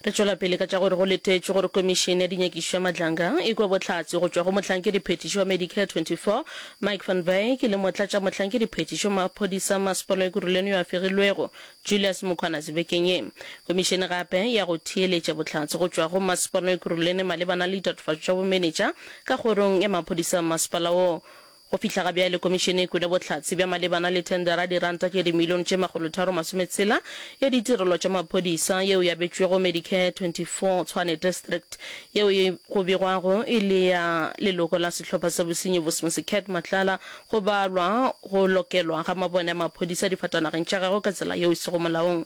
Re tšwela pele ka tša gore go letetšwe gore Komišene ya Dinyakišo ya Matlanga e kwe bohlatse go tšwa go Mohlankedi-phethiši wa Medicare 24, Mike van Wyk, le Motlatšamohlankedi-phethiši wa Maphodisa Mmasepala wa Ekurhuleni yo a fegilwego, Julius Mkhwanazi bekeng ye. Komišene gape e ya go theeletša bohlatse go tšwa go Mmasepala wa Ekurhuleni malebana le ditatofatšo tša bomenetša ka Kgorong ya Maphodisa a Mmasepala woo. Go fihla ga bjale, Komišene e kwele bohlatse bja malebana le thendera diranta tše dimilione tše makgolotharo masometshela ya ditirelo tša maphodisa yeo e abetšwego Medicare 24 Tshwane District yeo e go begwago e le ya leloko la sehlopha sa bosenyi Bosmose Cat Matlala go balwa go lokelwa ga mabone a maphodisa difatanageng tša gagwe ka tsela yeo e sego molaong.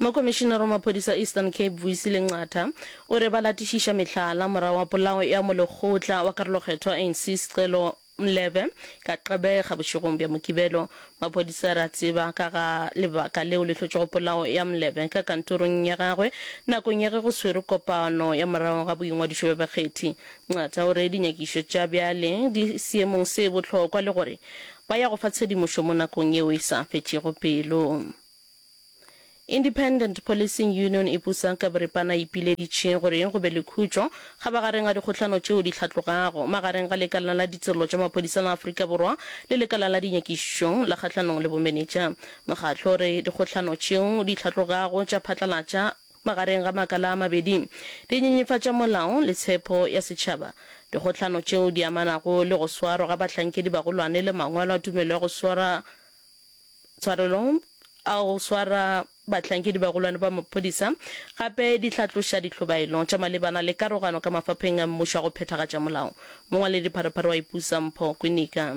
Mokomišinara wa maphodisa a Eastern Cape, Vuyisile Nqatha, o re ba latišiša mehlala morago ga polao ya molekgotla wa karolokgethwa wa ANC Scelo Mlebe ka Gqeberha bošegong bja Mokibelo. Maphodisa a re a tseba ka ga lebaka leo le hlotšego polao ya Mlebe ka kantorong ya gagwe nakong ya ge go swerwe kopano ya morago ga boingwadišo bja bakgethi. Nqatha o re dinyakišo tša bjale di seemong se bohlokwa le gore Ba ya go fa tshedimošo mo nakong yeo e sa fetšego pelo. Independent Policing Union e pusa ka boripana e ipileditše gore go be le khutšo kgabagareng ga dikgohlano tšeo di hlatlogago magareng ga Lekala la Ditirelo tša Maphodisa la Afrika Borwa le Lekala la Dinyakišišo la Kgahlanong le Bomenetša. Mokgatlo o re dikgohlano tšeo di hlatlogago tša phatlalatša Magareng ga makala a mabedi, di nyenyefatša molao le tshepo ya setšhaba. Dikgohlano tšeo di amanago le go swarwa ga bahlankedibagolwane le mangwalo a tumelo ya go swara tshwarelo a go swara bahlankedibagolwane ba maphodisa gape di hlatloša dihlobaelo tša malebana le karogano ka mafapheng a mmušo a go phethagatša molao. Mongwaledipharopharo wa Ipusampho Kwinika.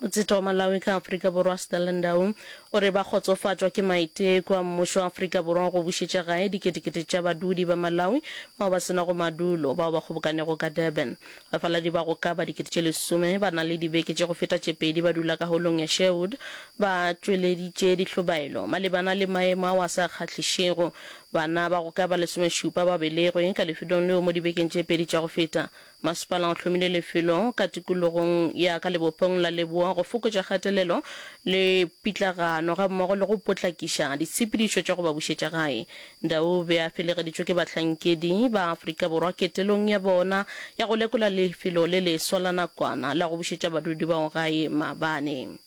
Motseta wa Malawi ka Afrika Borwa Stella Ndau o re ba kgotsofatšwa ke maiteko a mmušo wa Afrika Borwa go bušetša gae diketekete tša badudi ba Malawi bao ba se nago madulo bao ba kgobokanego ka Durban. Bafaladi ba go ka ba dikete tše lesome ba na le dibeke tše go feta tše pedi ba dula ka holong ya Sherwood ba tšweleditše dihlobaelo malebana le maemo ao a sa kgahlišego bana ba go ka ba lesomešupa ba belegwe ka lefetong leo mo dibekeng tše pedi tša go feta Masepala o hlomile lefelo ka tikologong ya ka lebopong la Leboa go fokotša kgatelelo le pitlagano gammogo le go potlakiša ditshepedišo tša go ba bušetša gae. Ndaube a felegeditšwe ke bahlankedi ba Afrika Borwa ketelong ya bona ya go lekola lefelo le leswa la nakwana la go bušetša badudi bao gae maabane.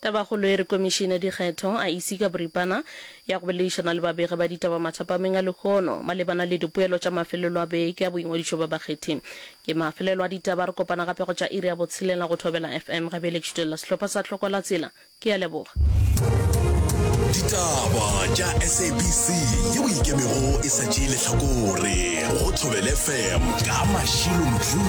Tabakgolo e re Komišene ya Dikgetho, IEC, ka boripana ya go boledišana le babegi ba ditaba mathapameng a lehono malebana le dipoelo tša mafelelo a beke a boingwadišo bja bakgethi. Ke mafelelo a ditaba. Re kopana gape go tša iri ya botshelela go Thobela FM. Gabjale ke šutelela sehlopha sa Tlhoko la Tsela. Ke a leboga. Ditaba tša SABC ye o ikemego e sa tšee lehlakore go Thobela FM ka mašilo mohlung.